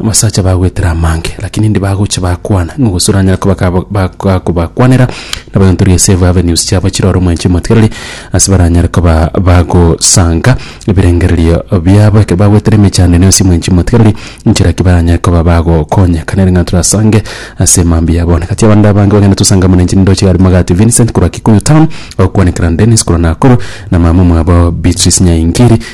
Abasacha bagwetera amange, lakini indi bagocha bakwana, nigo gose oranyare koba kaba- ba- ga- kobakwanera nabayontororia ase eve avenues chiabo chire ore omwenche emotigereri ase baranyare koba bagosanga ebirengererio biabo ekero bagwetera emechando ene ase omwenchi emotigereri nchera ki baranyare koba bagokonyeka nere ng'a torasange ase mambia ya bono. Egati y'abande abange bagenda tosanga amo na inche nindoche igare Magati Vincent korwa Kikuyu Town, ogokwanekera Dennis korwa Nakuru, na mama omwabo Beatrice Nyaingiri.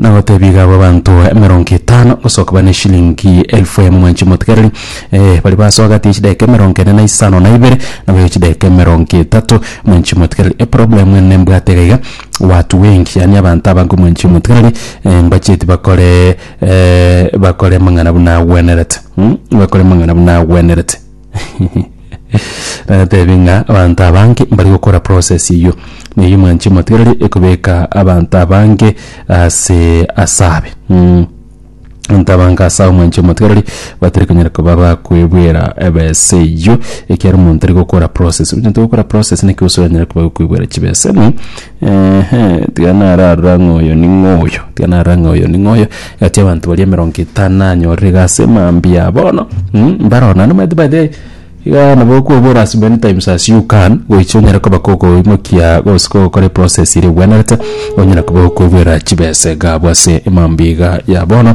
na goteebia iga aba abanto emerongo etano gosoka bane eshilingi elfu emo mwanche motigereri eh, baria basoa gati ya chidakika emerongo ene na isano na ibere na bayo chidakika emerongo etato mwanche motigereri eproblem ene nembwate iga iga watu wengi yaani abanto abange mwanche motigereri eh, mbacheti bakore eh, bakore amang'ana buna agwenerete mm, bakore amang'ana buna agwenerete. Natebi ng'a abanto abange mbari gokora process eyio, na eyio mwanche motigareri ekobeka abanto abange ase asabe. Mm. Abanto abange asabe mwanche motigareri batari konyara koba bakoebwera ebesa eyio, ekiagera omonto tari gokora process. Onye togokora process naki gose oranyare koba okoebwera chibesa ime. Eeh, tiga nararora ng'a oyo ning'o oyo, tiga narora ng'a oyo ning'o oyo, egati y'abanto baria emerongo etano nanyorire iga ase mambia bono, mh, mbaro ororo. Naende omanyete by the way, iga nabo okobora as many times as you can, goicha onyare koba kogoimokia gose kogokora eprocess ere ebwenerete, onyare koba okoigwera chibesa iga abwo ase mambia iga ya bono.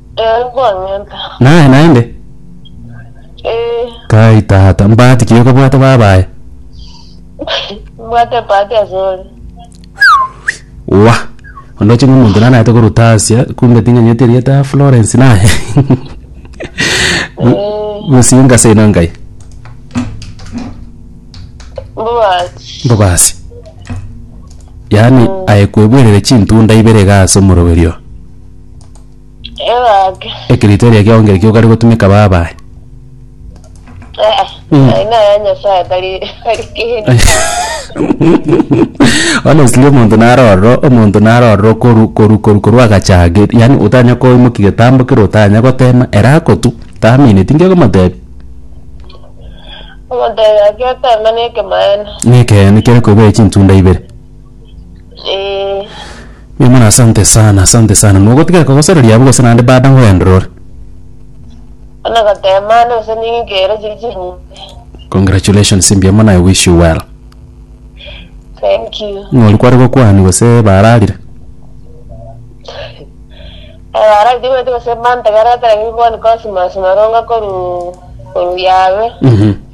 Eh, kwang'enta. Naye naende? Eh, Kai tata, mbahati ki okobwate babaye? mbwate bahati asore. Wa. Ondoche ng'a omonto nana aete koruta Asia, kumbe ting'anyeti erieta ya Florence naye. Eh, Gusii ngase ino ngai. mbwati. Mbobasi. Yaani aye kwebwerere chintunda ibere iga ase omoroberio. Ebag. Ekerito eria kiao ngerekio okare gotumeka baba aye. Eh, Mm. eh, ina ya Nyasaye tari tari kindi. honestly omonto narorora omonto narorora okoru koru koru koru agachage yani otanya koimoki getambo kere otanya gotema ere akotu tamine tinge komotebi Omonto oyo ageteme na ekemaene. nekeyane kere koibae chintunda ibere Eh, Mbuya mono asante sana asante sana mogotiga kogosereria abwo gose naende baada ngoendorore ona gotemana ase ningere chiri chinyinge. congratulations mbuya mono i wish you well Thank you. ng'ori kware gokwania gose bararire Ebara itigoete gose mantegera tari gokoni Cosmas maronga koru koru yabe. Mhm.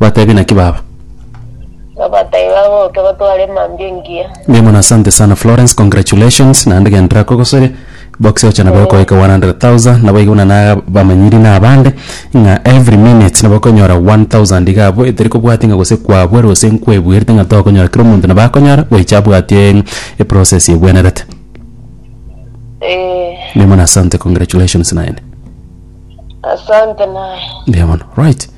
Bateebie, Naki baba? Babatebia, Bagoke batware emambia engiya. Mbuya mono asante sana Florence congratulations naende gento rakogosoria box oche nabo ekoika 100,000 nabo iga buna na bamanyiri na abande ng'a every minute nabo okonyora 1000 iga abwo etari kobwatia ng'a gose kwabwera gose nkwebuerete ng'a tokonyora kera omonto nabo akonyora goicha abwatie eprocess ebwenerete. Eh, Mbuya mono asante congratulations naende. asante naye. Mbuya mono right.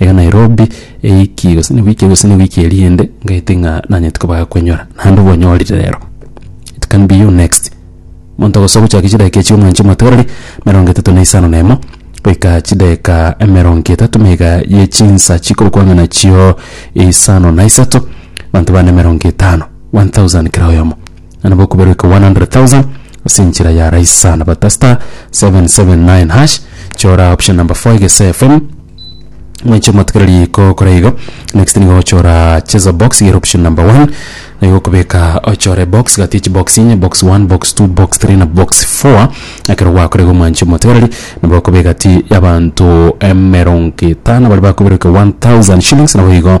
Iga Nairobi ewiki gose ne wiki gose ne wiki eria ende ngaete ng'a nanyete koba koenyora naende obonyorire rero it can be you next. Monto ogosoa gochia chidakika echio mwanche omoteberi emerongo etato na isano na emo goika chidakika emerongo etato na iga ye chinsa chikorokwa ng'a nachio isano na isato abanto bane emerongo etano 1000 kera oyomo. na nabo okobera eke 100,000 ase enchera ya rahisi sana bata star 779 hash chora option number 4 egese fm mwenche motigere riko kora igo next nigo ochora cheza box yero option number 1 nigo okobeka ochore box gati echi box inye box 1 box 2 box 3 na box 4 ekero gwakora igo mwanche motigereri nabo okobeka ti y'abanto emerongo etano bari bakobera eke 1000 shillings nabo igo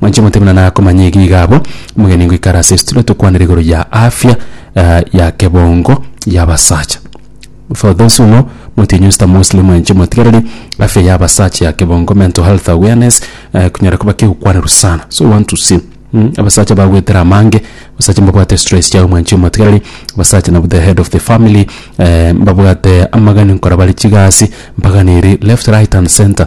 Mwanche motebe na nakomanya egi iga abwo, omogeni ngoikare ase estudio tokwanere igoro ya afya ya kebongo ya abasacha. For those who know, motienyi Mister Mosley mwanche motigereri afya ya abasacha ya kebongo, mental health awareness, konyara koba kegokwanerwa sana. So want to see abasacha bagoetera amange, abasacha mbabwate stress chiabo mwanche motigereri, abasacha nabo the head of the family, mbabwate amagani nkora bare chigasi, mbaganiri left, right and center.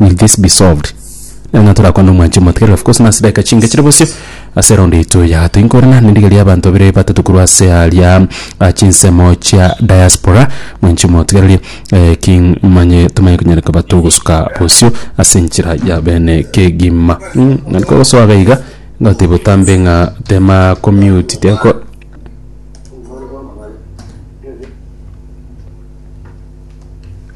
will this be solved nang'a torakwana omwanchi omotigari of course nase dakika chinke chire bosio ase eround eito ya gatatu inkorana nendiga ria abanto babere batato korwa ase aria ah, chinsemo chia diaspora mwanchi omotigareri eh, king manye tomanye konyara koba togosuka bosio ase enchera ya bene kegima mm, nariko gosoaga iga ngoteba otambe ng'a tema commute teko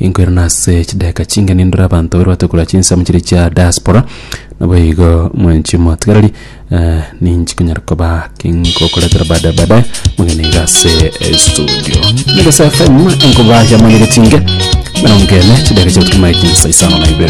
Inkwera nase chidakika chinke nindore abanto bairwate korwa chinsemo chiria chia diaspora naboigo mwenchi motigareri eh, ninchi konyara koba kinkokoretera baadaye baadaye mugende iga ase eh, studio Megasa FM enkoba ya manyere chinke mirongo ene chidakika chiagotuki maye chinsa isano na ibere